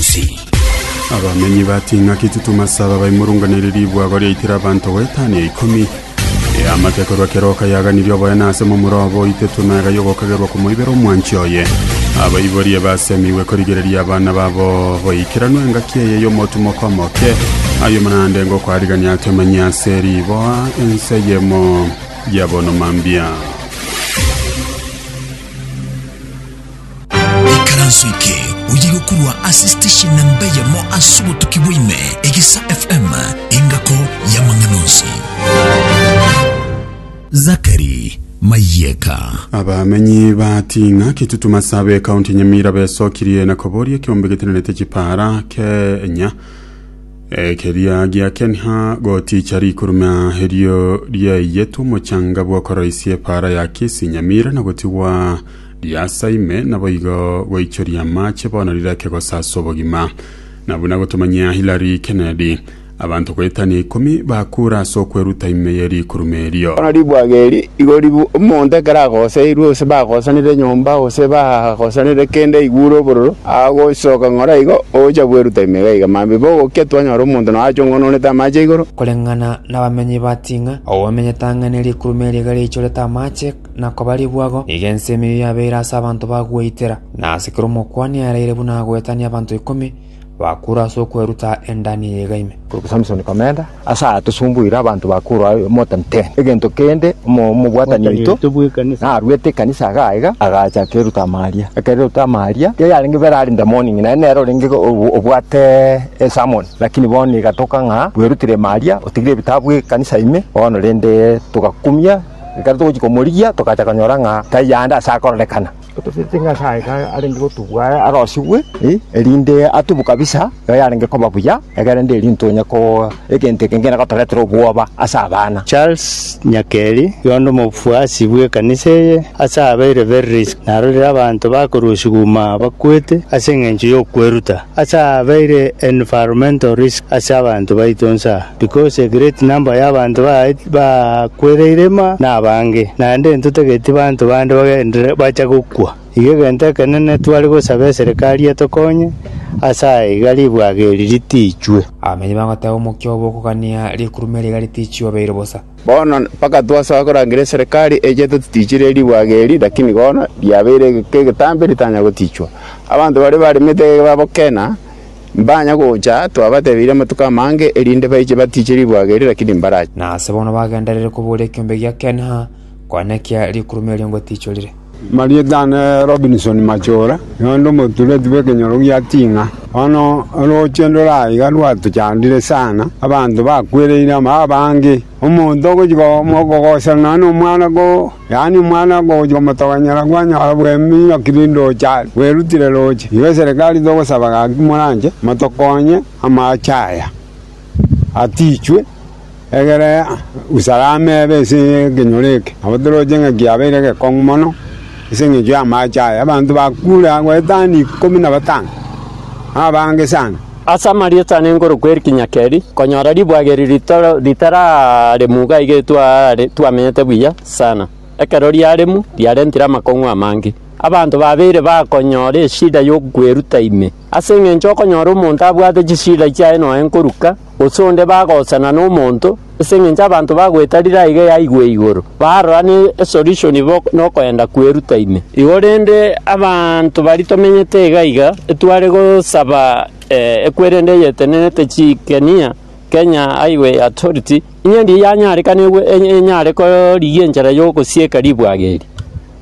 Usi. Abamenyi ba Ting'aki Titumasaba baimurunganire ribwago riaitire abanto goa etani ya ikomi. Eamate korwa keroka yaganirie oboene ase momura obo oite tunega y'ogokagerwa komoibera omwanchi oye. Abaiborie basemigwe korigereria abana babo boikeranu engaki eye y'omotumoko omoke. Ayio naende ngokoarigania atomenye ase riboa ense eyemo ya bono mambia. Ekaranso eke oye gokurwa ase station namba eyemo ase obotuki bwa ime, Egesa FM, engako y'amang'ana onsi. Zachary Mayeka. Abamenyi ba Ting'a, Kitutuma Sabe, ekaunti ya Nyamira besokirie na koboria ekiombe getenenete chipaara Kenya eh, keria gia Kenha goticha rikuruma erio riaiyetwe omochanga bw'okoroisia epaara ya Kisii Nyamira na gotigwa Riasa ime, naboigo goichoria amache bono rirake gosasa obogima. Na buna gotomanyia Hillary Kennedy, abanto goetania ikomi bakura ase okweruta ime ye rikurume erio. Bono ribwaga eri igo ribu omonto ekero agoseirwe, gose bagosanire enyomba, gose bagosanire kende aigure obororo, agosoka ng'ora igo ogocha bweruta ime iga iga. Mambia bogokia twanyora omonto noyo achongononete amache igoro. Koreng'ana nabamenyi ba Ting'a, ababamenyete ang'e ne rikurume eri iga riaichorete amache, na kobarigwago, nigo ense emeyo yabeire ase abanto ba gweitera, na ase kera omokuani aereire buna agoetania abanto ikomi bakurwa ase okweruta endani eye iga ime. Korokwa Samsoni komenta, Ase aya tosumbuire abanto bakurwa aye omotentere. Egento kende omo- omobwatani oito naruete ekanisa iga aiga, agacha akeruta amaria. Ekero eruta amaria, erio yarenge bere arinde morning, naye nere orenge o- obwate esermon. Lakini bono igatoka ng'a bwerutire maria, otigire ebitabu ekanisa ime, bono rende togakumia. Ekero togochia komorigia togacha konyora ng'a tari aande ase akorerekana. Totaete ng'a ase aye arenge gotubwa aye arosigwe, eh, erinde atubwe kabisa iga yarenge koba buya, egerende erinde tonye ko egento eke ngende gotoretera obwoba ase abana. Charles Nyakeri, oyonde omofuasi bw'ekanisa eye, ase abeire very risk, narorire abanto bakorusigwa uma bakwete ase eng'encho y'okweruta. Ase aya abeire environmental risk ase abanto baito onsi aa, because a great number y'abanto bakwereire ime nabange, naende ntotageti banto bande bagenderere bache gokwa. Iga egento ekenene tware gosaba eserekari etokonye ase aya iga ribwageri ritichwe. Abamenyi bagoteba omokia obo okogania rikurume riga ritichwe obeire bosa. Bono mpaka twasoa korangera eserekari eche totichire ribwaga eri, lakini bono riabeire egeka egetambe ritanya gotichwa. Abanto baria baremete egeka babokena, mbanya gocha twabatebirie amatuko amange erinde baiche batiche ribwaga eri, lakini mbarache. Na ase bono bagenderere koboria ekiombe gia Ken-ha, konya nekiya rikuruma erio ngotichorire. Marieta ne Robinson Machora, noende omotureti bw'ekenyoro gia Ting'a. Bono orooche ndore aiga rwatochandire sana, abanto bakwereire amo abange. Omonto ogochia kogoserana nonya nomwana ko, yaani omwana ogochia komotogonyera kwanyora bw'eminyoko rende ocha are, bwerutire roche. Igo eserekari togosaba gaki moranche motokonye amache aya. atichwe, egere usalama ebe ase ekenyoro eke. Nabo toroche ng'a kiabeire gekong'u mono ase eng'encho y'amache aya. Abanto bakure aa goetania ikomi na batano, na abange sana. Ase amarieta ane nkorokwa Eric Nyakeri, konyora ribwagirio ritoro ritararemu iga iga etware twamenyete buya sana. Ekero riaremu, riarentire amakong'u amange. Abanto babeire bakonyora eshida y'okweruta ime. Ase engencho okonyora omonto abwate chisida chiaye nonya nkoruka, gose onde bagosana nomonto, ase engencho abanto bagwetarire aiga eyaigwe igoro, barora ne esolution bo nokoenda kweruta ime. Igo rende abanto baria tomenyete iga iga, etware gosaba ekwerende eyetenenete chikenia, Kenya Highway Authority, inye ndiye yanyarekana enyare korigia enchera yogosieka ribwaga eri.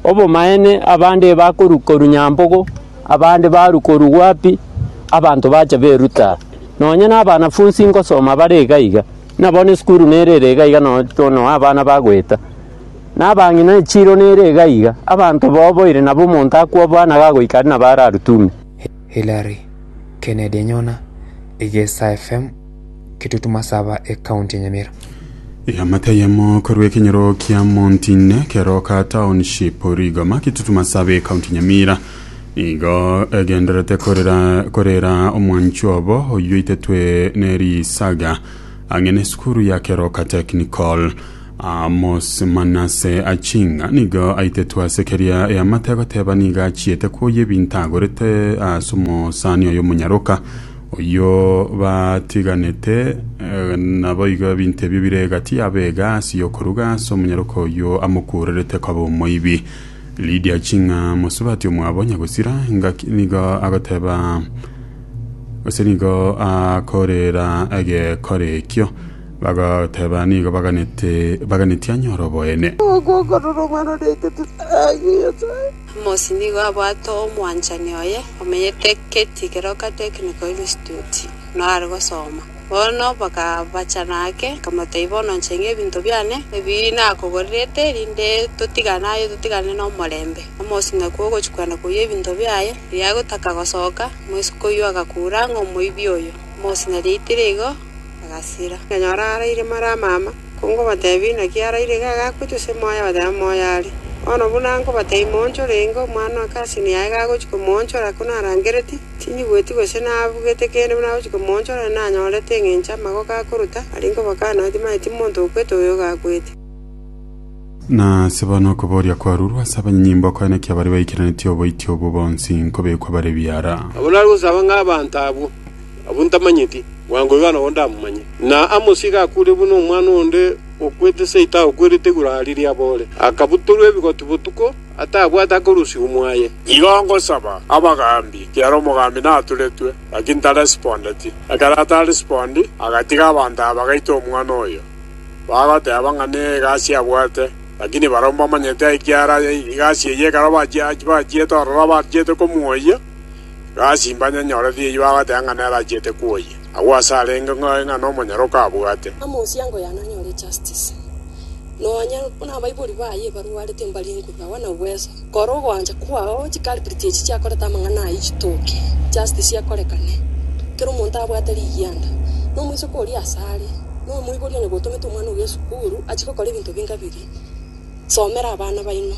Obomaene abande bakorwa korwa Nyambogo, abande barwa korwa Gwapi, abanto bacha beruta. Nonya na abanafunsi ngosoma bare iga iga, buna bono esukuru nere ere iga iga nonya tono abana bagoeta. Na abang'ina echiro nere iga iga, abanto baoboire nabo omonto akwo bwana gagoika aria nabo ararutume. Hillary, Kennedy Nyona, Igesa FM. Kitutu Masaba ekaunti ya Nyamira. Eamate ayemo korwa ekenyoro kia Montine, Keroka Township, Rigoma, Kitutu Masaba ekaunti ya Nyamira nigo egendererete korera korera omwanchi obo oyio oitetwe nerisaga ang'e nesukuru ya Keroka Technical. Amos Manase Achinga nigo aitetwe ase keria eamate agoteba nigo achiete kwoyia ebinto agorete ase omosani oyo omonyaroka Oyio batiganete, naboigo ebinto ebio bire egati yabo egasi yokoruga ase omonyaroka oyio amokuurerete koba omoibi. Lidia ching'a mosubati omwabo nyagosira, ngaki nigo agoteba gose nigo akorera egekora ekio, bagoteba nigo baganete baganeti anyore oboene. Amosi nigo abwate omwanchani oye omenyete geti geroka Technical Institute noare gosoma. Bono bakabachana ake, akamotebia, Bono nchenge ebinto biane ebi nakogorerete, rinde totigane aye, totigane nomorembe. Amosi nakwo ogochia kwenda koyia ebinto biaye. Riria agotaka gosoka, omosike oyio agakura ng'a omoibi oyo. Amosi nariaitire igo, agasira. Akanyora araire mara amama. Kongobateebia inaki araire iga agakwe, tose moyo, abateba moyo are. Bono buna nkobateebia moonchore, inga omwana o cousin yaye gagochia komoonchora, ko narangereti, tinyigweti gose nabugete kende buna agochia komoonchora, na nanyorete engencho amagoko akoruta, aria nkobakana ati, Maye timonto okwete oyo ogakwete. Na ase bono okoboria kwarurwe ase abanyanyimbo okoyana ki abaria baikeranetie oboiti obwo bonsi nkobekwa bare biara. Nabo narigosaba ng'a abanto abwo Abwo ntamanyeti, bwango iga nabo ndamomanye. Na Amosi iga akuure buna omwana onde okwete seito agokwerete igoro aa riria aboore, akabutorwa ebigoti botuko, atabwate akorusia omwaye. Igo ngosaba abagaambi, kiara omogaambi naturetwe, gaki ntaresipondeti. Ekero ataresipondi, agatiga abanto aba bagaita omwana oyo, bagoteeba ng'a negasi abwate, lakini barabwo mbamanyete ekiara egasi eye ekero bachiete ororo abachiete komoyia. Gasi mbanyanyore thieyo agateba ng'a nerachiete kwoyia. Agwo ase arenge ng'oe ng'a nomonyara okabwate. Amoosiango yane anyore ejustice, nonya buna abaibori baye ebarwarete mbare enguba agwo na obweso. Kora ogoancha kwao chiculprit echi chiakorete amang'ana ayio chitoke, justice ekorekane. Kera omonto abwate rigianda, nomoiseke oria asare, nomoibori onye gotomete omwana oria esukuru, achie gokora ebinto binga biria, somera abana baino.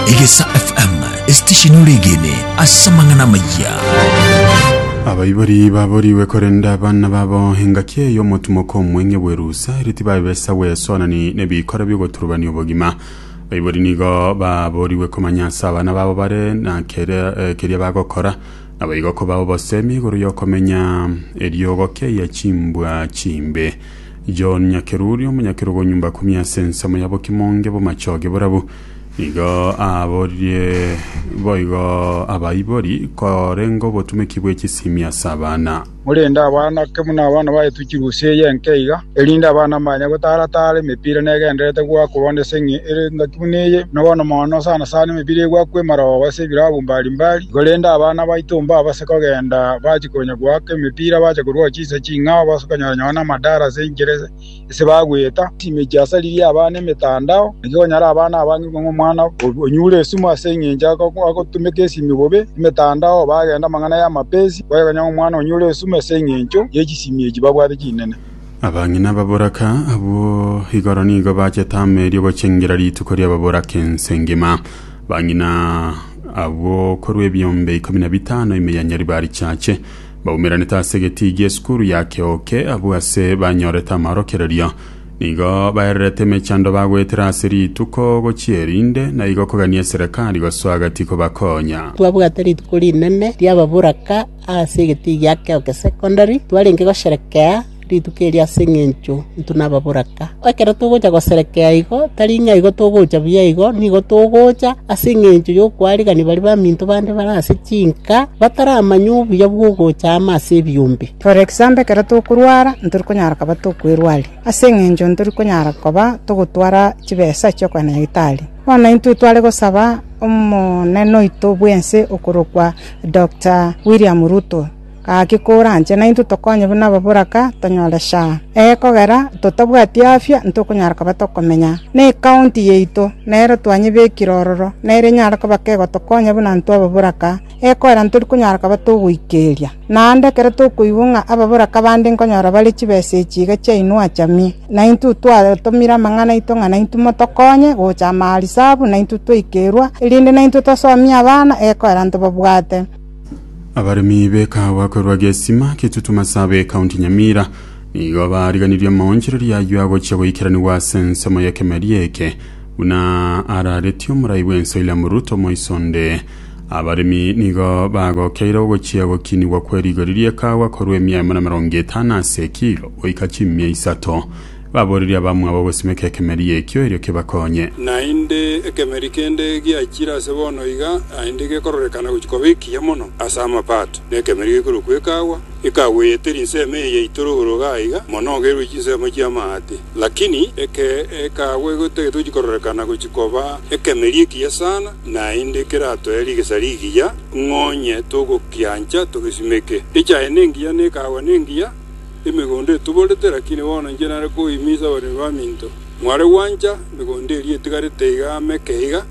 Egesa FM esitesheni oregene ase amang'ana amayia. Abaibori baborigwe korenda abana babo engaki eye y'omotumoko omweng'e bw'erusa, ere tibabesa bwesonani n'ebikora bi'ogoturubania obogima. Abaibori nigo baborigwe komanya ase abana babo bare na keria eh, keria bagokora, naboigo kobao obosemi igoro y'okomenya eriogo keyia chimbwa chimbe. John Nyakeruria, omonyakerogo nyomba akumia ase ensemo ya bokimonge bomachoge borabu. Nigo aaboririe boigo abaibori korenge obotumeki bwe chisimi ase abana. Morende abana ke buna abana baetwe chirusi eye enke iga, erinde abana mbanye gotara tara emepira negendererete goakwa bono ase eng'e ere engaki buna eye, buna bono mono sana sana emepira egoakwa emarooba ase ebilabu mbari mbari. Igo rende abana baito mbabase kogenda bachi konya goaka emepira bache korwa chi. Inse ching'ao bas'okonyora nyoo namadara ase enchera ase bagweta. Chimechie asaririe abana emetandao, naki okonyora abana abange ng'a omwana onyure esumu ase engencho agotumeka esimi bobe, emetandao, bagenda amang'ana y'amapesi, bagekonyora ng'a omwana onyure esumu ase engencho ye chisimi echi babwate chinene. Abang'ina ababoraka abwo igoro nigo bachete amo erio gochengera rituko ri'ababoraka ense ngima. Abang'ina abwo korwa ebiombe ikomi na bitano ime ya Nyaribari chache. Baumeranete ase egetiigia esukuru ya Keoke abwo ase banyorete amaorokererio. Nigo baererete emechando bagoetera ase rituko gochia erinde, na igo kogania eserekari gosoa gati kobakonya. Twabwate rituko rinene ri'ababoraka ase egetiigia Keoke Secondary, twarenge gosherekea rituko erio ase engencho intwe nababoraka. Ekero togocha goserekea igo, tari ng'a igo togocha buya igo, nigo togocha ase engencho y'okoarigereria baria baminto bande bare ase chinka, bataramanya obuya bw'ogocha amo ase ebiombe. For example, ekero tokorwara, ntori konyara koba tokwerwaria, ase engencho ntori konyara koba togotwara chibesa chi'okogenda nyagetari. Bono intwe tware gosaba omonene oito bw'ense okorokwa Doctor William Ruto. Gaki koranche naintwe tokonye buna ababoraka tonyore shaa. Ekogera totabwati afya ntokonyara koba tokomenya ne ekaunti yaito, nero twanyebekire ororo, nere enyare koba kegotokonya buna intwe ababoraka, ekogera ntori konyara koba togoikeria. Naende ekero tokoigwa ng'a ababoraka bande nkonyora bare chibesa echi iga chiaino achamie, naintwe twatomire amang'ana aito ng'a naintwe motokonye gocha amaarisabu naintwe twaikerwa, erinde naintwe tosomie abana ekogera ntobabwate. Abaremi b'ekahawa korwa Gesima, Kitutu, Masabe, County Nyamira nigo bariganirie amaonchoreria ayio agochia goikeranigwa ase ensemo y'ekemeria eke buna araretie omorai bw'ense William Ruto moiso onde. Abaremi nigo bagokeire ogochia gokinigwa kwe rigori ri'ekahawa korwa emiaemo na emerongo etano ase ekiro goika chimia isato. Baborerie abamwabo gosimeka ekemeria ekio erio kebakonye. Naende ekemeria kende giachire ase bono iga, naende gekororekana gochia koba ekiya mono ase amapato, na ekemeria gekorokwa Ekagwa, ekagweyete rinsemo eye yaito rogoro-iga aiga, monogerwe chinsemo chi'amaate. Lakini eke Ekagwa igo tari togochia kororekana gochia koba ekemeria ekiya sana, naende keratoe rigesa rigiya, ng'onye togokiancha togesimeke. Echaye nengiya, na Ekagwa nengiya. Emegondo etoborete, lakini bono inche nare koimiisa abaremi baminto. Mware gwancha emegondo eria etigarete iga amo eke iga,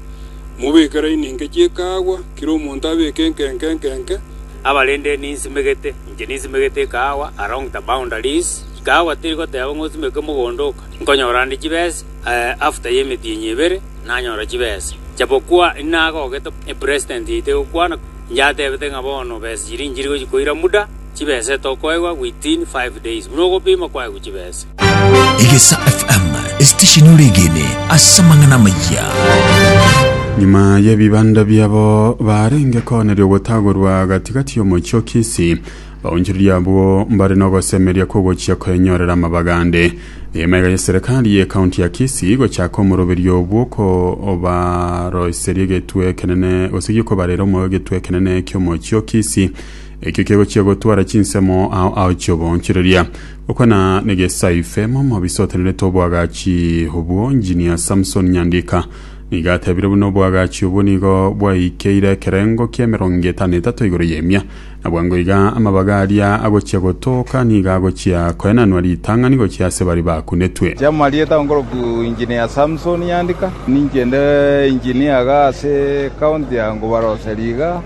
mobeke laini enke chi'ekaagwa, kera omonto abeke enke enke enke enke, Abarende ninsimegete, inche ninsimegete ekaagwa along the boundaries, ekaagwa teri goteba ng'a osimeke mogondo oka, nkonyora ande chibesa, eh, after y'emetienyi ebere nanyora chibesa. Japokua inagogete, eh, president yaito egokwana, inche atebete ng'a bono besa chiria inchiri gochikoira muda, Chibesete okoegwa within five days buna ogopima kwaegwa chibese. Egesa FM, esitesheni oregene ase amang'ana amayia. Nyuma y'ebibanda biabo barenge koneria ogotagorwa gatigati y'omochie o Kisii, baonchoreria abwo mbare n'ogosemeria kw'ogochia koenyorera amabaga ande. Emaiga ya serikali ye kaunti ya Kisii gochaka omoroberio obwo kobaroiseria egetwe ekenene gose giokobarera omo egetwe ekenene ki'omochie o Kisii Ekio kegochia gotwara chinsemo ao ao chi'oboonchoreria. Gokwana negesaife, Momobisa otenerete oboagachi obwo, Engineer Samson Nyandika nigo atebire buna oboagachi obwo nigo bwaikeire ekerengo ki'emerongo etano etato igoro y'emia. Na bwango iga amabaga aria agochia gotooka nigo agochia koenanwa ritang'ani gochia ase baria bakunetwe. Chi'amarieta onkorokwa Engineer Samson Nyandika, ninche nde Engineer iga ase County ya Ngubaroseri iga.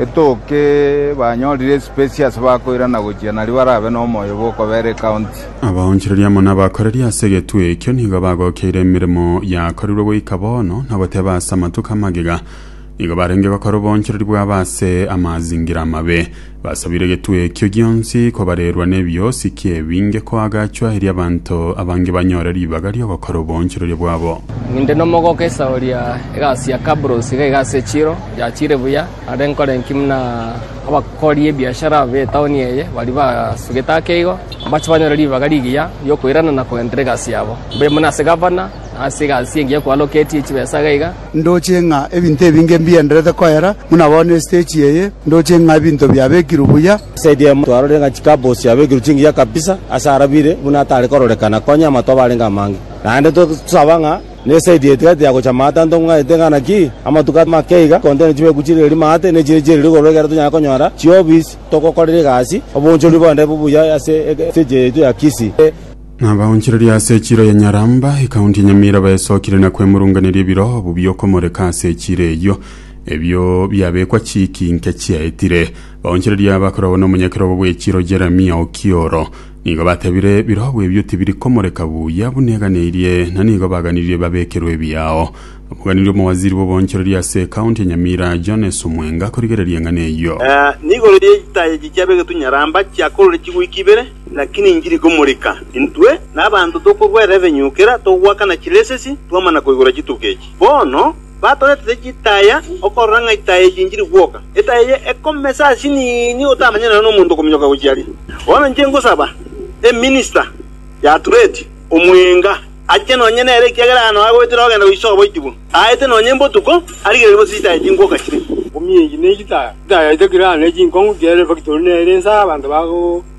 Etooke banyorire esipesi ase bakoirana gochia nario barabe nomoyo bw'okobeera ekaunti. Abaonchoreria amo nabakoreri ase egetuo ekio nigo bagokeire emeremo yakorirwe goika bono na goteeba ase amatuko amagega nigo barenge gokora oboonchoreri bwabo ase amazingira amabe. Basabire egetuo ekio gionsi kobarerwa n'ebiosi ki ebinge koagachwa erio abanto abange banyore ribaga ri'ogokora oboonchoreria bwabo. Ninde nomogoka esaho ria egasi ya Kabros iga iga ase Chiro. Yachire buya, are nkore inki buna abakori ebiashara b'etaoni eye baria basugete ake igo, mbache banyore ribaga rigiya ri'okoirana na kogenderera egasi yabo, mbaire buna ase gavana, na ase egasi engiya ekwaloketie chibesa iga iga. Ndoche ng'a ebinto ebinge mbigendererete koera buna bono esiteji eye, ndoche ng'a ebinto biabekirwe buya. Saidi emo twarorire ng'a chikapu chiabekirwe chingiya kabisa ase arabire buna atare kororekana, konya amatoba arenge amange. Naende tosaba ng'a. Nesaiti etigati ya gocha amaate anto ng'aite ng'ana ki? Amatuko amake iga, kontene chibeeku chire rimo aate, ne chire chire rigoro ekero tonyare konyora chiofisi togokorera egasi, oboonchoreria bonde bobuya ase ekerecha yaito ya Kisii. Nabaonchoreria ase echiro ya Nyaramba, ekaunti ya Nyamira baesokire na kwemurunganeria ebiro obo biokomoreka ase echiro eyio, ebio biabekwa chiiki inke chiaetire. Baonchoreria bakoragwa nomonyakera obo bw'echiro Jeremia Okioro, Nigo batebire, Biroogo ebio tibiri komoreka buya buna eganeirie, na nigo baganirie babekerwe ebiao. Omoganiria omowaziri bw'oboonchoreria ase ekaunti ya Nyamira, Jones Omwenga akorigereria eng'ana eyio. Nigoro ye chitaaya echi chiaba egetunyaramba chiakorire chigwiki ibere, lakini inchiri ikomoreka. Intwe, na abanto tokorwa erevenyukera, togoakana chilesesi, twamana koigora chituko echi. Bono. Batoretete chitaya okorora ng'a itaya eye inchiri gwoka. Etaya eye ekomesa ase chinini otamanyeti nonya nomonto okominyoka gochia aria. Bono inche ngosaba eminista y'Atureti omwenga ache nonya nere ekiagera aye nao agoetera ogenda goisoa oboitibu. Aete nonya embotuko arigererie gose chitaya chingwoka chire. Ominyeiki ne chitaya. Chitaya chire kera aane chinkong'u chiere efactori nere ense abanto bago.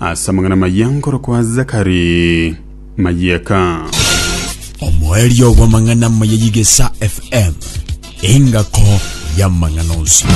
Ase amang'ana amayia nkorokwa Zakari Mayeka. Omoerio bw'amang'ana amaya y'Igesa FM, engako y'amang'ana onsi.